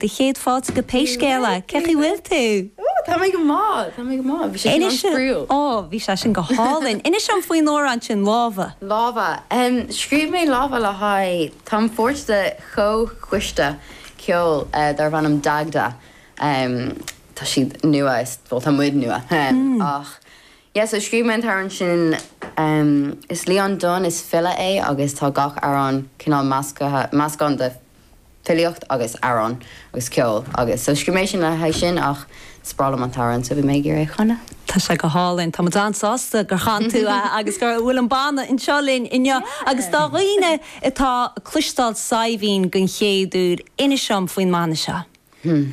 Do chéad fáilte go Pé Scéal é, cé chaoi bhfuil tú? Ó, tá mé go maith, tá mé go maith. Bhí sé sin an-spraíúil. Ó, bhí sé sin go hálainn. Inis dom faoin amhrán sin, Lámha. Lámha. Scríobh mé Lámha le haghaidh, táim pháirt de chomhchoiste ceoil darb ainm Dagda. Tá siad nua, bhuel, tá muid nua. Ach, yeah, so scríobh mé an t-amhrán sin. Is Leon Dunne is file é agus tá gach amhrán cineál measctha, meascán de filíocht agus amhráin agus ceol agus so scríobh mé sin le haghaidh sin ach is breá liom an t-amhrán so bhí mé ag iarraidh é a chanadh. Tá sé go hálainn, tá muid an-sásta gur chan tú é agus go bhfuil an banna anseo linn inniu agus do dhaoine atá ag cloisteáil Saidhbhín den chéad uair, inis dom faoin mbanna seo. Hmm.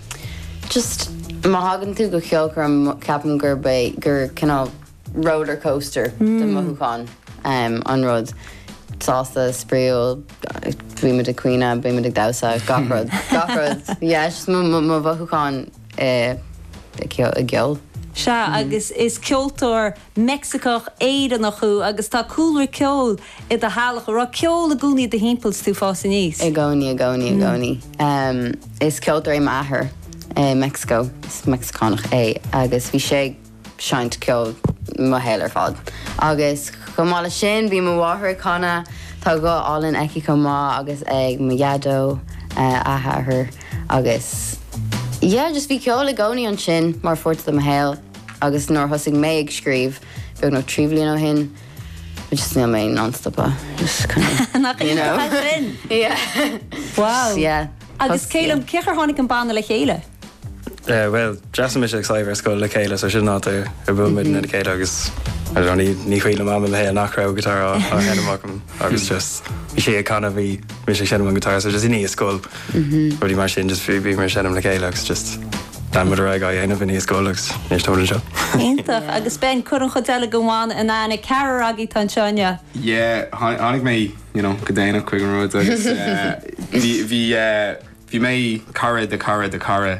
Just má thagann tú go ceolchoirm ceapaim gurb é gur cineál roller coaster de mhothúcháin an rud. Sásta, spraíúil, bímid ag caoineadh, bímid ag damhsa, gach rud, gach rud. Yeah, is just mo mhothúcháin i gceol. Sea, agus is ceoltóir Meicsiceach Éireannach thú agus tá cúlra ceoil i do theaghlach a raibh ceol i gcónaí i do thimpeall is tú ag fás aníos? I gcónaí, i gcónaí, i gcónaí. Is ceoltóir é m'athair i Meicsiceo, is Meicsiceánach é agus bhí sé ag seinnt ceoil mo shaol ar fad. Agus chomh maith leis sin, bhí mo mháthair ag canadh, tá guth álainn aici chomh maith agus ag mo Dhaideo, a hathair, agus yeah, just bhí ceol i gcónaí ansin mar pháirt de mo shaol. Agus nuair a thosaigh mé ag scríobh, beagnach trí bhliain ó shin, just níl mé in ann stopadh, just kind of, you know. Nach iontach é sin? Yeah. Wow. Yeah. Agus cé liom, cé chaoi ar tháinig an banna le chéile? Eh, bhuel, d'fhreastail mise agus Sadhbh ar scoil le chéile, so sin an áit ar ar bhuail muidne le chéile agus, I don't know, ní ní cuimhin liom am i mo shaol nach raibh guitar á á sheinm agam agus just bhí sí ag canadh bhí mise ag seinm an guitar, so just i ndiaidh scoil, Rudaí mar sin just bhí muid ag seinm le chéile agus just lean muid ar aghaidh á dhéanamh i ndiaidh scoil agus níor stór anseo. Iontach! Agus Ben, cuir an chuid eile den bhanna in aithne, ceathrar agaibh atá anseo inniu. Yeah, tháinig mé you know go déanach chuig an rud agus bhí bhí bhí mé cara de cara de cara.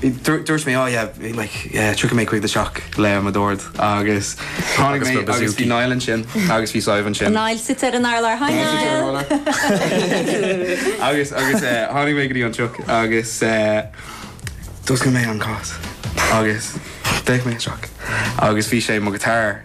Dúirt mé oh yeah bhí like yeah tiocfaidh mé chuig do theach le mo dord agus tháinig mé agus bhí Niall ansin agus bhí Sadhbh ansin. Niall suite ar an urlár hi Niall! Agus agus eh tháinig mé go dtí an teach agus eh d'oscail mé an cás agus d'fhéach mé isteach agus bhí sé mo guitar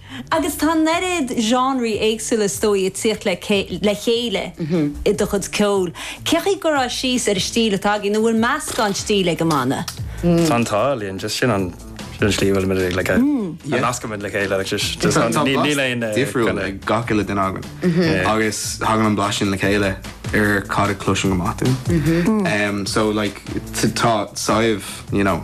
Agus tá an oiread genres éagsúla is dóigh ag tíocht le chéile i do chuid ceoil. Cé chaoi gur fhás sibh suas ar an stíl atá agaibh, nó bhfuil meascán stíl ag an mbanna? Tá an t-ádh linn, just sin an slí a bhfuilimid ag, like, a nascaimid le chéile, like, just, just an, níl, níl aon, eh, difriúil kinda- ag gach uile duine againn. Agus thagann an blas sin le chéile ar cad a chloiseann amach tú. Em, so, like, t- tá saibh, you know,